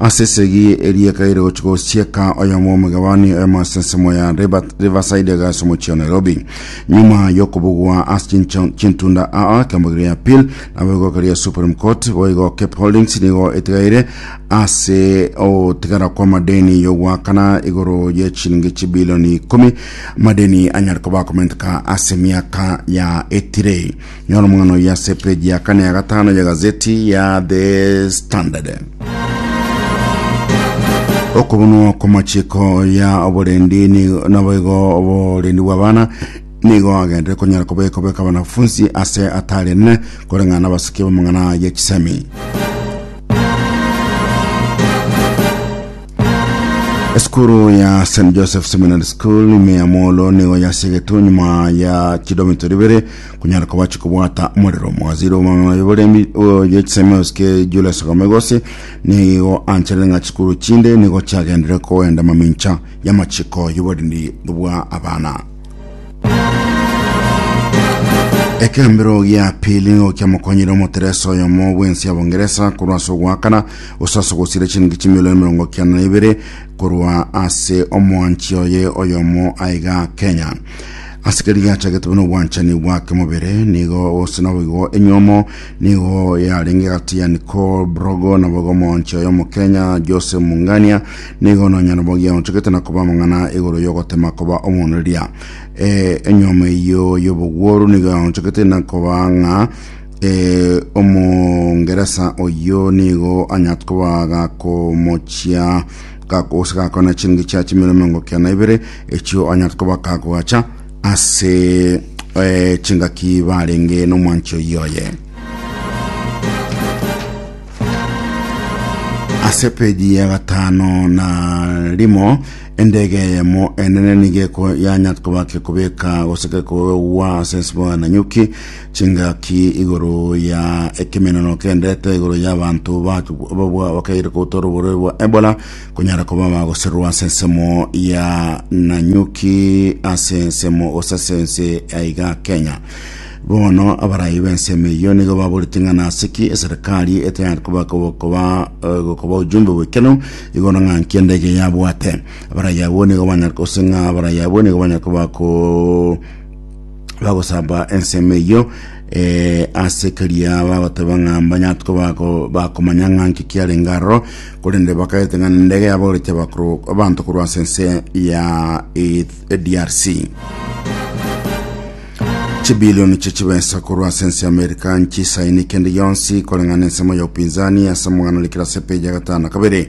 Ase esegi eria ekaire gochia gosieka oyomo omogabani oyomo ase ensemo ya River- Riverside iga ase omochie wa Nairobi. Nyuma y'okobugwa ase chincho- chintunda aa ekeombe keria appeal nabo egoka ria Supreme Court boigo Cape Holdings nigo etigaire ase ogotigara kw'amadeni y'ogoakana igoro ye chilingi chibilioni ikomi amadeni anyare koba akomenteka ase emiaka yaetire. Nyora omong'ano oyio ase epeji ya kane ya gatano ya gazeti ya The Standard. Okobonwa kw'amachiko ya oborendi ni- nabo igo oborendi bw'abana nigo agenderete konyara kobekwa beka abanafunsi ase atari enene koreng'ana n'abasiki b'amang'ana ya chisemi esukuru ya st joseph seminary school ime ya molo nigo yasigetwe nyuma ya kilometer ibere kunyara kobachi kobwata omorero omogazire omwang'aye boremi oye chisemeos ke Julius Gomegosi nigo anchere ng'a chikuru chinde nigo chiagendire kogenda mamincha y'amachiko y'oborindi bwa abana ekembero gia pili nigo kiamokonyire omoteresa oyomo bwensi abongeresa korwa ase ogoakana gose ase ogosira chiringi chimilioni mirongo kiana na ibere korwa ase omwanchi oye oyomo aiga kenya asikeri gachagete buna obwanchani bwa kemobere nigo gose nabo igo enyomo nigo yarenge gati ya Nicole Brogo na bogo monche oyo mokenya Jose Mungania nigo nonya nabo giaonchegete na koba amang'ana igoro yogotema koba omoneria e, enyomo eyo yobogworu nigo yaonchegete na koba ng'a e, omongeresa oyo nigo anyatkobaga komochia gakogose gakona chingi chia chimero miongo kia na ibere echio onyarete koba kagoacha ase eh, chingaki barenge nomwancho yoye ase peji ya gatano na rimo endege yemo enene nigeko yanyarete koba kekobeka gose kekogwa ase nsibwa na nyuki Chingaki igoro ya ekemeneno kendete igoro ya abanto babwa bakaire koutora oborwaire bwa Ebola konyara koba bagosererwa ase ensemo ya Nanyuki ase ensemo gose ase ense aiga Kenya. Bono abarayi b'ensemo eyio nigo baboreti ng'a nasiki eserikari etayari koba koba gokoba ojumbe bwekeno igoro ng'a nki endege yabwate abarayi abwo nigo banyara gose ng'a abarayi abwo nigo banyara koba ko bagosaba ensemo eyio eh, ase keria bagoteba ng'a mbanyatwe bako- bakomanya ng'a nki kiarenge aroro korende bakaete ng'a nendege yabogoretie abakoro abanto korwa ase ense ya Eth- eh, drc chibilioni chie chibesa korwa ase ense ya amerika nchisaini kende yonsi koreng'ana ensemo ya upinzani ase omogano rikira ase peji ya gatano kabere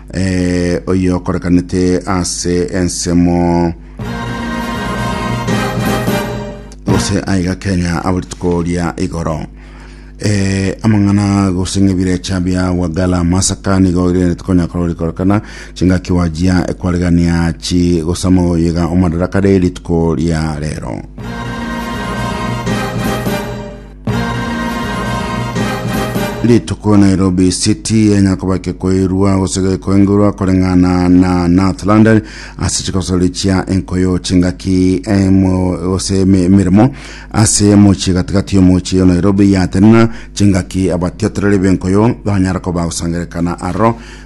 Ee, oyio okorekanete ase ensemo gose aiga kenya abo rituko ria igoro Eh, amang'ana gose ng'ebirecha bia wagala masaka nigo rende tikonya korori korekana chingaki wajia ekwaregania chi gosama oyega omadaraka re rituko ria rero rituko nairobi city enyakoba kekoirwa gose gekoengurwa koreng'ana na north london ase chikosori chia enkoyo chingaki emo gose eme- emeremo ase mochie gatigati yomochie nairobi yatenena chingaki abatiotoreri benkoyo banyara koba gosangerekana aro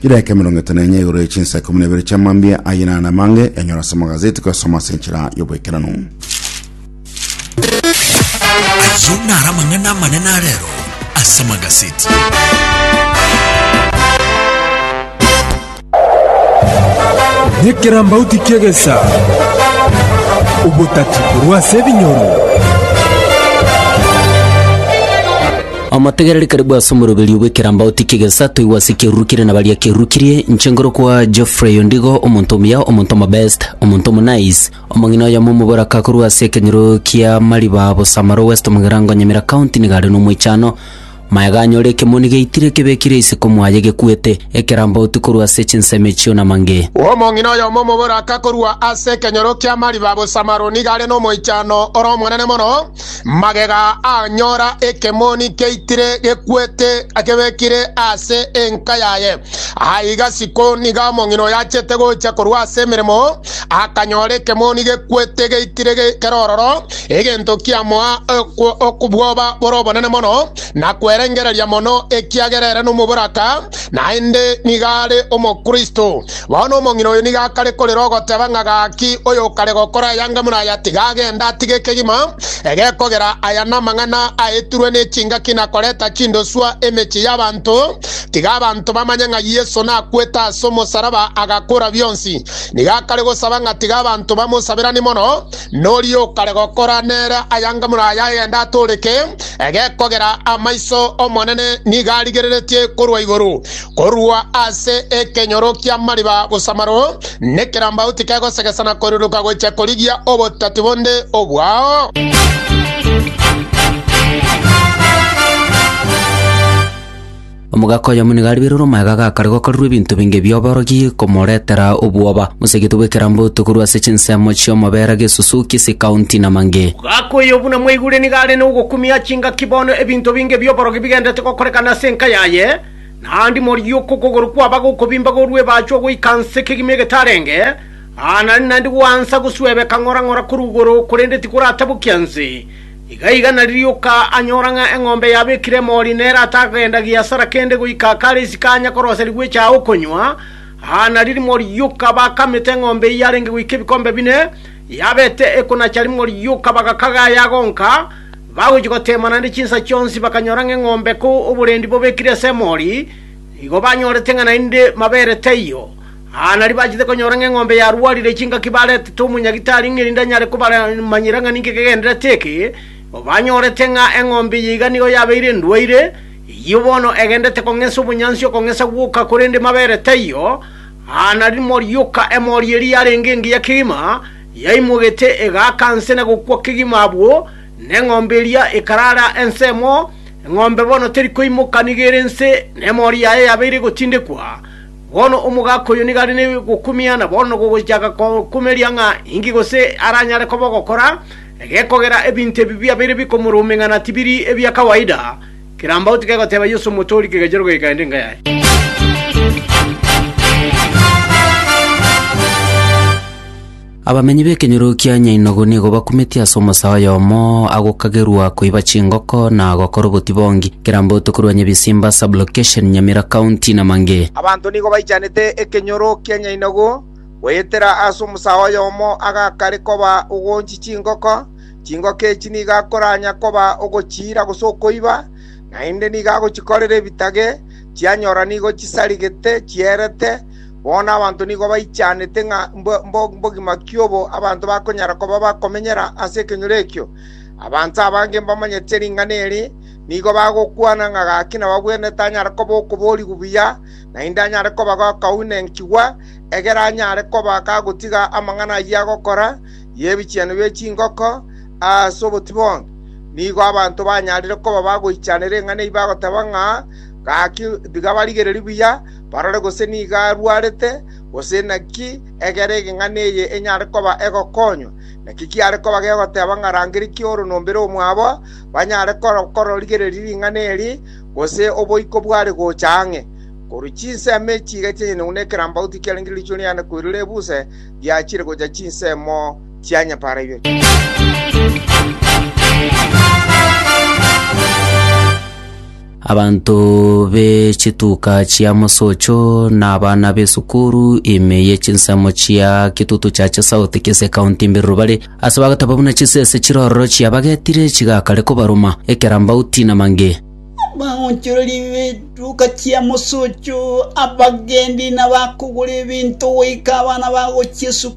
Chidaeka emerongo etano enye igoro ye chinsa ikomi na ibere chia mambia aye nane amange yanyora ase amagazeti koyasoma ase enchera y'oboikeranu. Ayio naro amang'ana amanene a rero ase amagazeti. Nyekirambauti kiegesa obotatikorwa ase ebinyoro. Omotegereri karibu ase omoroberio bw'ekeramba otikie gesa toigwa ase ekeruru kire na baria kerukirie, inche nkoro kwa Geoffrey ondigo, omonto omuya, omonto omobest, omonto omonaice. Omong'ina oyomo omoboraka akorwa ase ekenyoro kia mariba Bosamaro West Mugirango Nyamira County nigo are nomoichano. Maega anyore ekemoni geitire ekebekire isiko mwaye gekwete, ekeramba oti korwa ase chinsemo echio na mange. Omong'ina oyomo omoboraka akorwa ase ekenyoro kia mariba Bosamaro nigo are nomoichano ore omonene mono, Magega anyora ekemoni keitire gekwete akebekire ase enka yaye. Aiga Sikoni nigo omong'ina oyachete gocha korwa ase emeremo, akanyora ekemoni gekwete geitire kere ororo, egento kiamoa okobwoba bore obonene mono na kwerengereria mono, ekiagera ere nomoboraka. Naende nigo are omokristo. Bono omong'ina oyo nigo akare korera ogoteba ng'a gaki oyo okare gokora aya anga buna aya tiga agende atige ekegima ege kogera aya namang'ana aetirwe ne chingaki na koreta chindoswa emechie y'abanto tiga abanto bamanye ng'a Yeso nakwete ase omosaraba agakora bionsi nigo akare gosaba ng'a tiga abanto bamosaberani mono nori okare gokora nere aya anga buna aya agende atoreke Egekogera amaiso Omonene nigo arigereretie korwa igoro, korwa ase ekenyoro ki'amariba gosamaro, nekerambagu tikegosegesana koirodoka gochia korigia obotati bonde obwao. Omogaka oyomo nigo ariberwe omoyo ga gakare gokorerwa ebinto binge bi'oborogi komoretera obwoba. Mosegete bw'ekeramboto korwa ase chinsemo chi'omobera gesusu g'isi kaunti na mange. Omogaka oyo buna mwaigure nigo are nogokumia chingaki bono ebinto binge bi'oborogi bigenderete gokorekana ase enka yaye, naende morigia oko okogoro kwaba gokobimba gorwa ebaachwa goika nse kegima egetarenge, aana naende gwansa goswebeka ng'ora ng'ora korwa igoro, korende tikoratabokia nse. Igaiga naririoka anyora ng'a eng'ombe yabekire emori nere atagenda giasara kende goika kare isiko anye koroseria gwechaya okonywa, aa nari rimo rioka bakamete eng'ombe eyio yarenge goika ebikombe bine, yabete ekonacha rimo rioka bagakaga ayagonka, bagochia goteema naende chinsa chionsi bakanyora ng'a eng'ombe ko oborendi bobekire ase emori, nigo banyorete ng'a naende mabere taiyo. Aa nario bachete konyora ng'a eng'ombe yarwarire chingaki baretete omonyagitari ng'a erinde anyare kobamanyera ng'a ninki kegenderete eke, banyorete ng'a eng'ombe eye iga nigo yabeire endwaire, eyio bono egenderete kong'esa obonyansi okong'esa gwoka korende mabere taiyo. Aa nario morioka emori eria yarenge engiya kegima yaimogete egaaka nse na gokwa kegima abwo neng'ombe eria ekarara ensemo, eng'ombe bono teri koimoka nigo ere nse, na emori yaye yabeire egotindekwa. Bono omogaka oyo nigo are negokumia, na bono nogochaka kokumeria ng'a inki gose aranyare koba ogokora, egekogera ebinto ebi biabeire bikomoruma ing'ana tibiri ebia kawaida. Kirambauti kegoteba Yeso omotoori kegachia rogei kaende enka yaye. Abamenyi b'ekenyoro kia Nyainogo nigo bakumetie ase omosaa oyomo agokagerwa koiba chingoko na gokora obotibongi, Keramboto korwa Nyabisimba Sub-location, Nyamira County na mangĩ. Abanto nigo baichanete ekenyoro kia Nyainogo goetera ase omosaa oyomo agakare koba ogoonchi chingoko, chingoko echi nigo akoranya koba ogochiira gose okoiba, naende nigo agochikorera ebitage, chianyora nigo chisarigete chierete, Bono abanto nigo baichanete ng'a mbogima ki obo abanto bakonyara koba bakomenyera ase ekenyoro ekio. Abanto abange mbamanyete ring'ana eri nigo bagokwana ng'a gaki nababwene tanyare koba okoboorigwa buya, naende anyare koba gakaunenchigwa, egere anyare koba gagotiga amang'ana ayio agokora y'ebichenu bie chingoko ase obotibonge. Nigo abanto banyarire koba bagoichanera eng'ana eyio bagoteba ng'a, Gaki tiga barigererie buya, Barore gose nigo arwarete, gose naki, egere egeng'ana eye enyare koba egokonywa. Naki kiare koba gegoteba ng'a rangeria kioro nombere omwabo, banyare kororigereria ring'ana eri, gose oboiko bware gocha ang'e. Korwa chinsemo echi iga chianyanyaigwa nekerambagu tikiarenge riichwe riane koirora ebuse riachire gocha chinsemo chia nyapaara ibere. Abanto be chituka chia mosocho na abana b'esukuru ime ye chinsemo chia Kitutu Church South Kisii County Mbiru bare ase bagataba buna chisese chirororo chiabagetire chigakare kobaruma ekerambauti na mange. Abaonchoreri b'etuka chia mosocho, abagendi, na bakogora ebinto goika abana bagochia esukuru.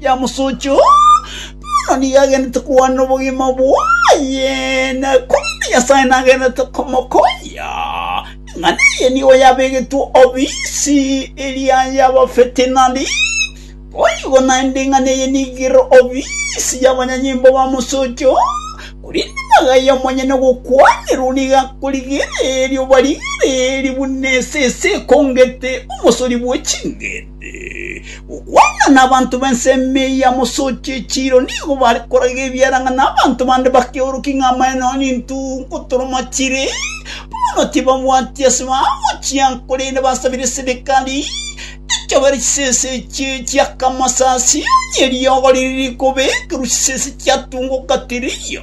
yamosochia, Oo, bono nigo agenderete kogwanera obogima bwaye, na korende Nyasae nagenderete komokonya, ing'ana eye nigo yabegetwe obisi eria y'abafeti nari. Boigo naende ing'ana eye nigo ere obisi y'abanyanyimbo bamosochia, Oo, korende magaiyo amonyene gokwanerwa nigo akorigereria obarigereria buna esese ekongete omosori bwe ching'iti. Gokwana nabanto b'ensemo eye ya mosoche echiiro nigo bare koraga ebiara ng'a nabanto bande bakeorokia ng'a amaene ao nintu nkotoroma chire, bono tibabwati ase baabo chiango korende basabire serikali echobere chisese echio chia Kamasasi, onye eriogo riri rikobekerwa chisese chiatungoka tiriyo.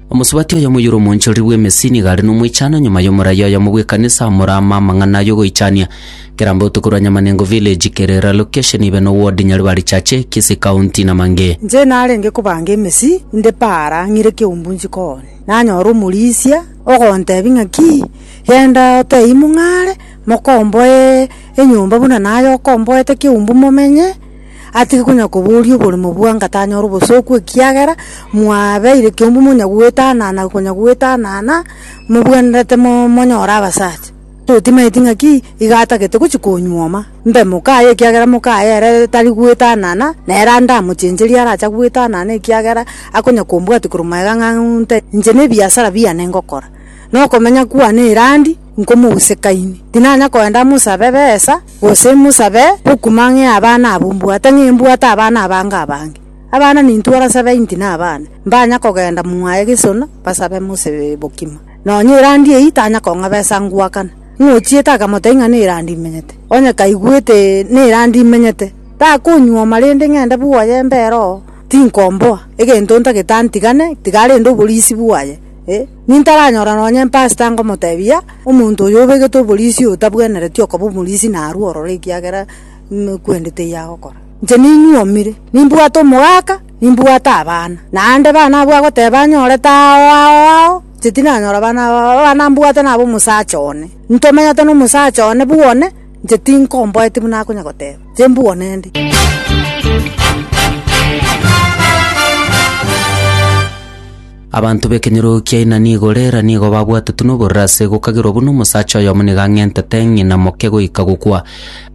Omosubati oyomo oyore omoonchoreri bw'emesi nigo are nomoichano nyuma y'omoraia oyomo bw'ekanisa omoraama amang'ana y'ogoichania. Keramba otokorwa Nyamanengo Village, Kerera Location, ibe no ward, Nyaribari Church, Kisii County na mangĩ. Inche narenge kobanga emesi inde paara ng'ire kioumbu njikone, nanyora omorisia ogontebia ng'aki, genda otebie mong'are mokomboe enyomba buna naye okomboete kioumbu momenye. atige konya koboria oborimo bwange atanyora obosooku ekiagera mwabeire ekiombe monya goetanana konya goetanana mobwenerete mo- monyore abasacha. Totimaeti ng'aki iga atagete gochia konyuoma, mbe moka aye ekiagera moka aye ere tari goetanana, nere ande amochencherie arache goetanana ekiagera akonya kombwatia korwa magega ng'a nte inche na ebiasara biane ngokora, na okomenya kwane erandi nkomosekaini, tinanya koenda mosabe besa. Gose mosabe gokuma ng'a abana abwo mbwate ng'a mbwate abana abange abange. Abana nintwara 70 na abana, mbanya kogenda mwaye gesona basabe mosabe bokima. Nonya erandi eyio tanya kong'a besa ngwakana. Ng'a ochiete akamotebia ng'a nerandi imenyete, onye kaigwete nerandi imenyete, takonyuoma rende ng'ende bwoye mbere oo, tinkomboa, egento ntagete antigane, tiga arende oborisi bwaye. Nintaranyora nonya empastor angomotebia, Omonto oyo obegete oborisia oyo tabwenereti okoba omorisia narue ororo ekiagera kwende teiyo agokora. Inche ninyuomire, nimbwate omogaka, nimbwate abana, naende bana abwo agoteba anyorete ao ao ao, inche tinanyora bana aba aba, abana mbwate naba omosacha one, ntomenyete na omosacha one bwone, inche tinkomboeti buna akonya goteba, inche mbwone ndi. Abanto b'ekenyoro kia inani igoro era nigo babwatete noborere ase gokagerwa buna omosacha oyomo nigo ang'entete ng'ina moke goika gokwa.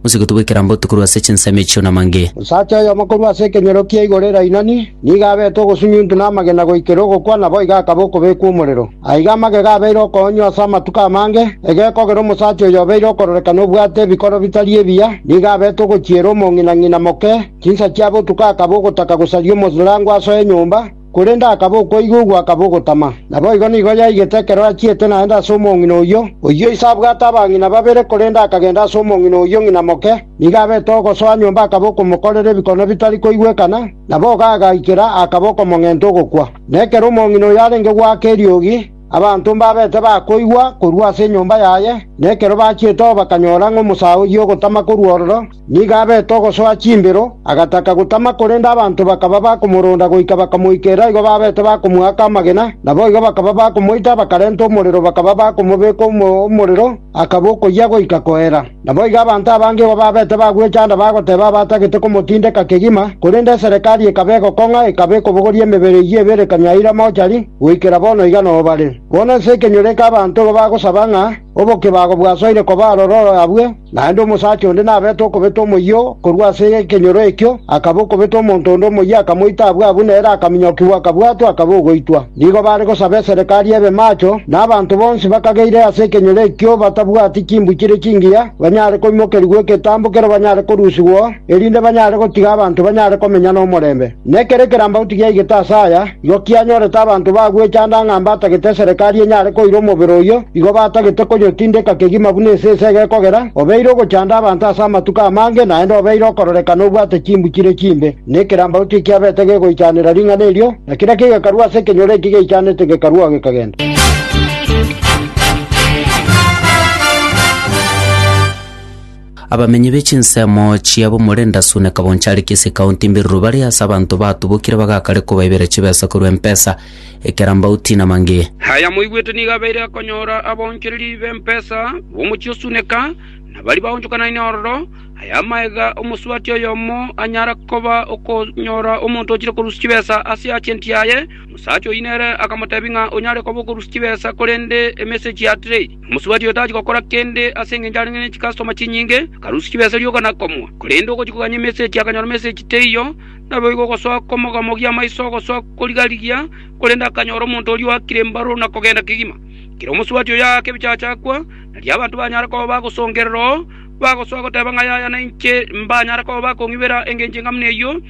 Mosegotu bw'ekerambe otukorwa ase chinsemo echio namange. Omosacha oyomo korwa ase ekenyoro kia igoro era inani nigo abete ogosunyuntu na amagena goikera ogokwa, naboigo akaba okobekwa omorero. Aiga amagega abeire okoonywa ase amatuko amange, egekogera omosacha oyo obeire okororekana obwate ebikoro bitari ebiya nigo abete ogochiera omong'ina ng'ina moke chinsa chia botuko akaba ogotaka gosaria omoslango asoe enyomba, Korende akaba okoigugwa, akaba ogotama. Naboigo nigo yaigete ekero achiete naende ase omong'ina oyio. Oyio ise abwate abang'ina babere, korende akagenda ase omong'ina oyio ng'ina moke. Nigo abete ogosoa nyomba akaba okomokorera ebikone bitari koigwekana, na boka agaikera akaba okomong'enta ogokwa. Na ekero omong'ina oyo arenge goaka eriogi, abanto mbabete bakoigwa korwa ase enyomba yaye, na ekero bachiete oo bakanyora ng'a omosaa oyio ogotama korwa ororo, Nigo abete ogosoa chimbero, agataka gotama, korende abanto bakaba bakomoronda goika bakamoikera igo babete bakomoaka amagena. Naboigo bakaba bakomoita, bakarenta omorero, bakaba bakomobeka omo omorero, akaba okoyia goika koera. Naboigo abanto abange igo babete bagwechanda bagoteba abatagete komotindeka kegima, korende eserekari ekaba egokong'a, ekaba ekobogoria emebere eyio ebere kanyaira mochari, goikera bono iga nobare. Bono ense ekenyoreka abanto igo bagosaba ng'a, Obokebago bwasoire koba aroro oro abwe, naende omosacha onde nabete okobeta omoyio korwa ase ekenyoro ekio, akaba okobeta omonto onde omoyio akamoita abwo abwo nere akaminyokigwa akabwatwa akaba ogoitwa. Nigo bare gosaba eserekari ebe maacho, na abanto bonsi bakageire ase ekenyoro ekio batabwati chimbu chire chingiya banyare koimokerigwa eketambo kero banyare korusigwa erinde banyare gotiga abanto banyare komenya nomorembe. Na ekero ekerambagu tigiaigete aase aya, igo kianyorete abanto bagwechanda ng'a mbatagete eserekari enyare koira omobere oyio, igo batagete konyotindeka kegima buna esese egekogera, obeire ogochanda abanto ase amatuko amange, naende obeire okororekana obwate chimbu chire chimbe, na ekerambagu tikiabete gegoichanera ring'ana erio, na kera kegekarwa ase ekenyoro eki geichanete gekarua gekagenda. Abamenyi be chinsemo chiabo Morenda Sune Kabonchari Kisii County Mbiruru bare ase abanto batubokire bagakare kobaibera chibesa korwa Mpesa, Ekerambauti na mangĩ. Aya moigwete nigo abeire akonyora abaonchereri b'empesa b'omochie o Suneka, na baria baonchokanaine ororo. Aya amaega omosubati oyomo anyara koba okonyora omonto ochire korusia chibesa ase agenti yaye. Omosacha oyio nere akamotebia ng'a onyare koba okorusia chibesa korende emessage ya trade. Omosubati oyo tachia gokora kende ase engencho arenge ne chikastoma chinyinge, akarusia chibesa rioka na komua. Korende ogochia kogania emesegi akanyora emesegi teiyo, naboigo ogosoa komogamogia amaiso ogosoa korigarigia, korende akanyora omonto oria oakire mbarwa na kogenda kegima. Ekero omosubati oyo aaka ebichacha akwa, nario abanto banyare koba bagosongerera oo, bagosoa goteba ng'a yaya nainche mbanyare koba bakong'ibera engencho eng'amu neyio.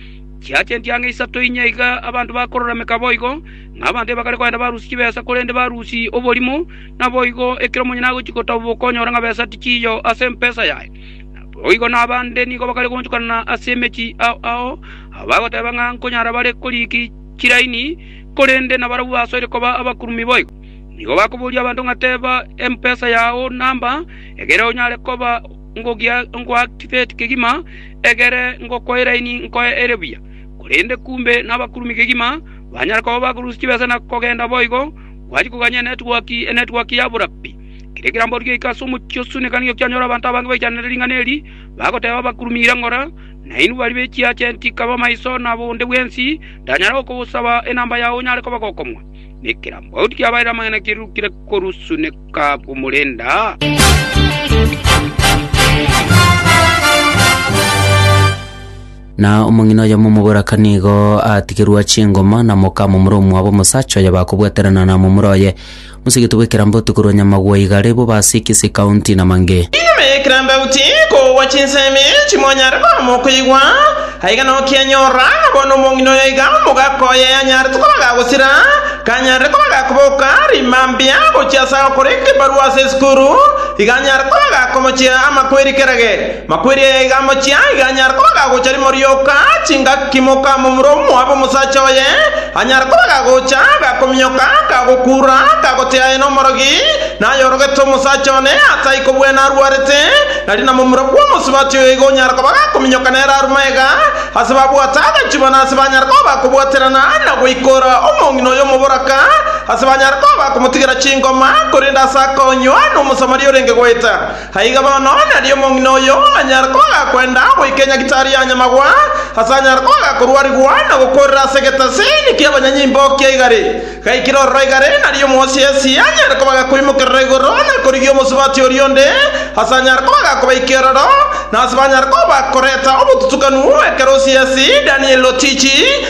Chiacha entiang'a isato inya iga abanto bakorora meka boigo, ng'a abanto ebakare kogenda barusia chibesa korende barusia oborimo, Naboigo ekero omonyene agochia gotaboboka okonyora ng'a besa tichiiyo ase empesa yaye, naboigo nabande nigo bakare goonchokana ase emechie ao, abagoteba ng'a nkonyara bare koriiki chiraini, korende nabarabwo basoire koba abakurumi boigo. Nigo bakoboria abanto ng'a teba empesa yao namba, egere onyare koba ngoactivate kegima, egere ngokwe eraini nkoe ere buya. Korende kumbe nabakurumi kegima, banyare koba bakorusia chibesa na kogenda boigo. Gwachia koganya enetwork, enetwork yabora pi. Kera ekerambe origie goika ase omochie o Sunnit nigo kianyora abanto abange baichananeire ring'ana eri, bagoteba abakurumire ngora, Nainwe baria be chiagent kaba maiso na bonde bwensi, ndanyare gokosaba enamba yao onyare koba gokomwa? Na ekerambe oria kiabaeire amang'ana kirurukire korwa Sunnit komorenda. Na omong'ina oyomo omoboraka nigo atigerwa chingoma na moka momura omwabo omosacha oyo bakobwaterana na momura oye. Mosigete bw'ekerambe otikorwa nyamagwa igare, bobe ase ekesi ekaunti na mange. Nyuma y'ekerambe goti kogwa chinsemi chimonyare koama okoigwa, aiga nokianyora, na bono omong'ina oyo iga omogaka oye anyarete koba gagosira, kanyarire koba gakoboka rima mbia gochia ase agokora ekebarua ase esukuru, iga anyare koba gakomochia amakweri kerage. Makweri aya iga amochie, aiga anyare koba gagocha rimo rioka, chingaki moka momura omoabe omosacha oye, anyare koba gagocha, gakominyoka, kagokuura, kagotea aye nomorogi, nayorogete omosacha one ase aiko bwena arwarete, nari na momura bw'omosubati oyo igo onyare koba gakominyoka nere aru maega, ase babwate agachubwa nase banyare koba bakobwaterana na goikora omong'ina oyo omoboraka, ase banyare koba bakomotigera chingoma, korende ase akonywa nomosamaria orenge goeta. Aiga bono nari omong'ina oyo anyare koaga kwenda goika enyagitari ya nyamagwa, ase anyare koaga korwarigwa na gokoorera ase egetasini ki'abanyanyimbo kia igare. Gaikire ororo igare nari omwosiesi anyare kobaga koimokerera igoro na korigia omosubati oria onde, ase anyare koaga kobaika eroro, na ase banyare koba koreta obotutukanu ekero osiesi Daniel otichi,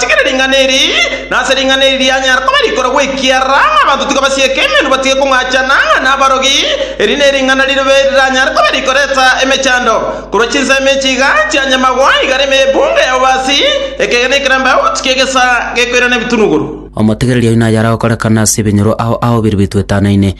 Atigire ring'ana eri, na ase ring'ana eri rianyare koba rikoro gwekiara, ng'a abanto tikabasieka emenwa batige kong'achana, ng'a nabarogi. Eri nering'ana ribe riranyare koba rikoreta emechando, korwa chinsemo echi iga chia nyamagwa, igare emebunga ya obasi, ekegena ekeramba out ki'egesa gekoirana ebitunuguru. Omotegereria oino ayare gokorekana ase ebinyoro ao ao bire bituetanaine.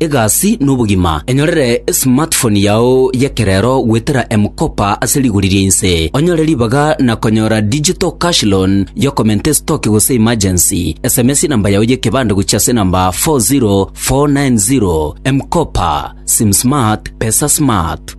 egasi na obogima. Enyorere esmartphone yao y'ekerero goetera M-Kopa ase rigori ria inse. Onyore ribaga na konyora digital cash loan y'okomenta estoki gose emergency. Sms enamba yao y'ekebande gochia ase enamba 40490. M-Kopa, Sim Smart, Pesa Smart.